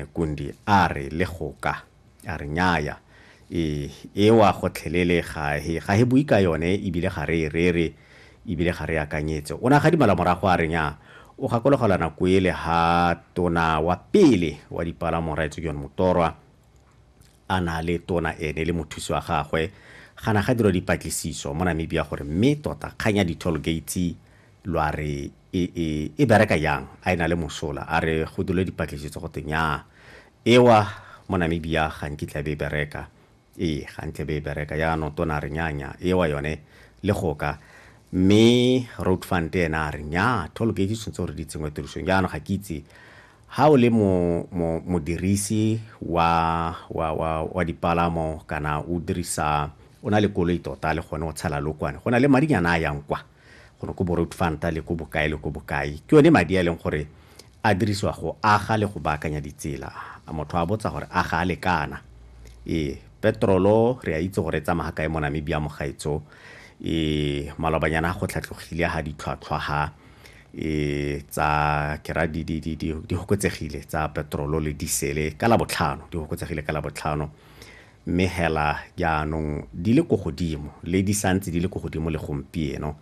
Kundi a re le go ka, a re nnyaya, e, ewa gotlhelele ga he, ga he bui ka yone ebile ga re e rere ebile ga re e akanyetse. O ne a gadimala morago a re nnyaa, o gakologelwa nako ele ha Tona wa pele wa Dipalamo Rrae Tsokione Motorwa a na le Tona ene le mothusi wa gagwe ga na ga dirwa dipatlisiso mo Namibia gore mme tota kgang ya di-toll gates lo a re E, e, e bereka yang? A e na le mosola? A re go dule dipatletše tsa go te nyaa. Ewa, mo Namibia ga nkitla be e bereka. Ee, ga ntle be e bereka. Yaanong tona a re nyaa, nyaa. Ewa yone, le go ka. Mme Road Fund ena a re nyaa, toll gate tshwanetse gore di tsenngwe tirisong. Yaanong ga ke itse ha o le mo, mo, modirisi wa, wa, wa, wa dipalamo kana o dirisa o na le koloi tota le gone o tshela lokwane go na le madinyana a yang kwa gore ko bo-road fund-a le ko bokae le ko bokae ke yone madi a e leng gore a dirisiwa go aga le go baakanya ditsela a motho a botsa gore a ga a lekana ee petrolo re a itse gore e tsamaya kae mo namibia mogaetso ee malobanyana go tlhatlogile ga ditlhwatlhwa ga ee tsa kera di tsa petrolo le disele ka la botlhano di ka la botlhano mme hela jaanong di le ko godimo le di santse di le ko godimo le gompieno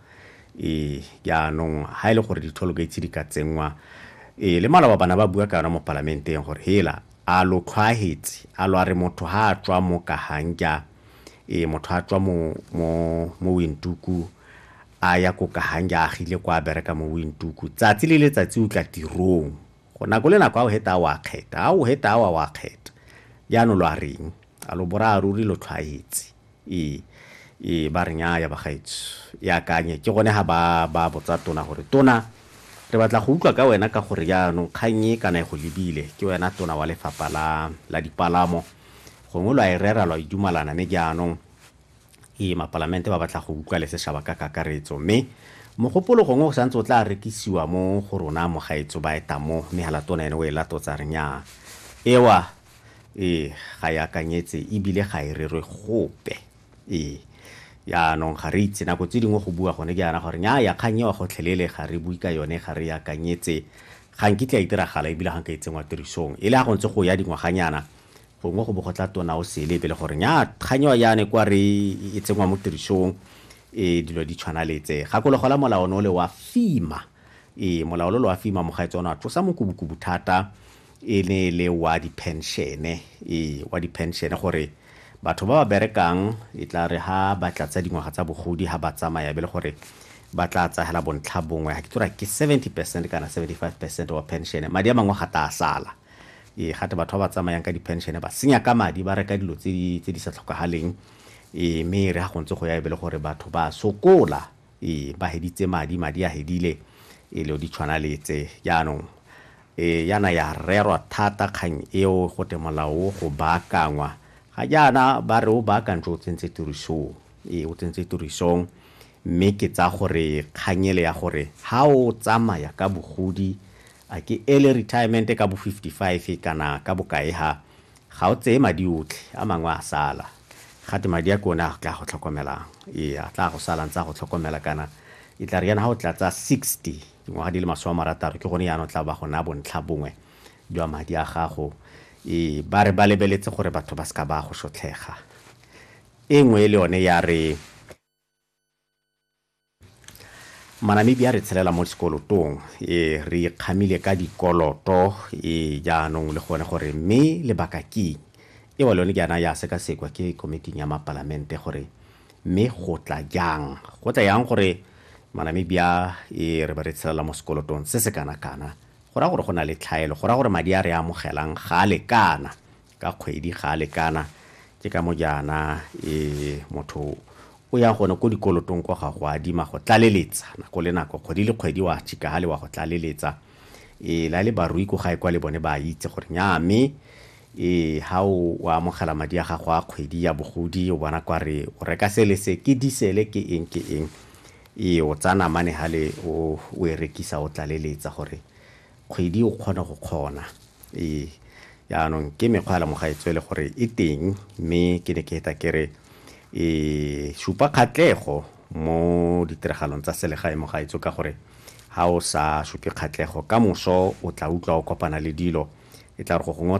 ee jaanong ha e le gore di-toll gates di ka tsenngwa ee le maloba bana ba bua ka yona mo palamenteng gore hela a lo tlhwaetse a lo a re motho ha a tswa mo kahangja ee motho a tswa mo mo mo wintuku a ya ko kahangja a agile kwa a bereka mo wintuku tsatsi le letsatsi o tla tirong go nako le nako a o heta a o a kgeta a o heta a o a o a kgeta jaanong lo a reng a lo bora ruri lo tlhwaetse ee ee ba reng ya bagaetso e akanye ke gone ga ba ba botsa tona gore tona re batla go utlwa ka wena ka gore jaanong kgang e kana e go lebile ke wena tona wa lefapha la la dipalamo gongwe lo a e rera lo a idumalana ne jaanong Ee, mapalamente ba batla go utlwa le seshaba ka kakaretso, mme mogopolo gongwe o sa ntse o tla rekisiwa mo go rona mogaetso ba eta mo, mme ha latona ene o e latotsa re nyaa. Ewa, ee, ga e akanyetse e bile ga e rerwe gope. Ee. Jaanong ga re itse, nako tse dingwe go bua gone jaana gore nyaaya kgang ewa gotlhelele ga re bue ka yone, ga re e akanyetse, ga nkitla e diragala e bile ga nka e tsenngwa tirisong. E le ha go ntse go ya dingwaganyana, Gongwe go bo go tla tona o sele pele gore nyaa kgang eo ya ne kwa re e tsenngwa mo tirisong e dilo di tshwana le tse. Gakologo la molao no le wa FEMA. Ee, molao lo lo wa FEMA mogaetse o ne wa tlosa mokubukubu thata e ne e le wa diphenšene. Ee, wa diphenšene gore batho ba ba berekang e tla re ha ba tla tsa dingwaga tsa bogodi ha ba tsamaya be le gore ba tla tsayela bontlha bongwe ga ke tora ke 70 percent kana 75 percent wa pension madi a mangwe ga ta sala Ee, gate batho ba ba tsamayang ka di-pension ba senya ka madi ba reka dilo tse di sa tlhokagaleng ee mme re ga go ntse go ya e be le gore batho ba sokola ee ba heditse madi madi a hedile e le di tshwana le tse jaanong ee yana ya rerwa thata kgang eo go te molao go baakangwa ga jaana ba re o baakantse o tsentse tirisong ee o tsentse tirisong mme ke tsa gore kganyele ya gore ha o tsamaya ka bogodi A ke early retirement ka bo 55 kana ka bokae ha? Ga o tseye madi otlhe, a mangwe a sala. Gate madi a ke one a tla go tlhokomelang. Ee, a tla go sala ntse a go tlhokomela kana e tla re yana ga o tlatsa 60, dingwaga di le masome a marataro ke gone yana o tla ba go naya bontlha bongwe jwa madi a gago. Ee, ba re ba lebeletse gore batho ba seka ba go shotlhega. E nngwe le yone ya re. Manamibia re tshelela mo sekolotong e re ikgamile ka dikoloto e jaanong le gone gore mme lebaka ke e wa lone ke yana ya sekasekwa ke komiting ya mapalamente gore mme go tla jang go tla yang gore Manamibia e re ba re tshelela mo sekolotong se se kana kana go ra gore go na le tlhaelo go ra gore madi a re amogelang ga a lekana ka kgwedi ga a lekana ke ka mo jaana e motho o ya gone ko dikolotong kwa ga go adima go tlaleletsa nako le nako kgwedi le kgwedi wa chika ga le wa go tlaleletsa e la le barui ko gae kwa le bone ba itse gore nya mme e ha o wa amogela madi a gago a kgwedi ya bogodi o bona kwa re o reka sele se ke disele ke eng ke eng e o tsana mane ha le o e rekisa o tlaleletsa gore kgwedi o kgona go kgona ee yaanong ke mekgwa ya lemoga e tswele gore e teng mme ke ne ke eta ke re e supa kgatlego mo ditiragalong tsa selegae mo gaetso ka gore ga o sa supe kgatlego ka moso o tla utlwa o kopana le dilo e tla re go gongwe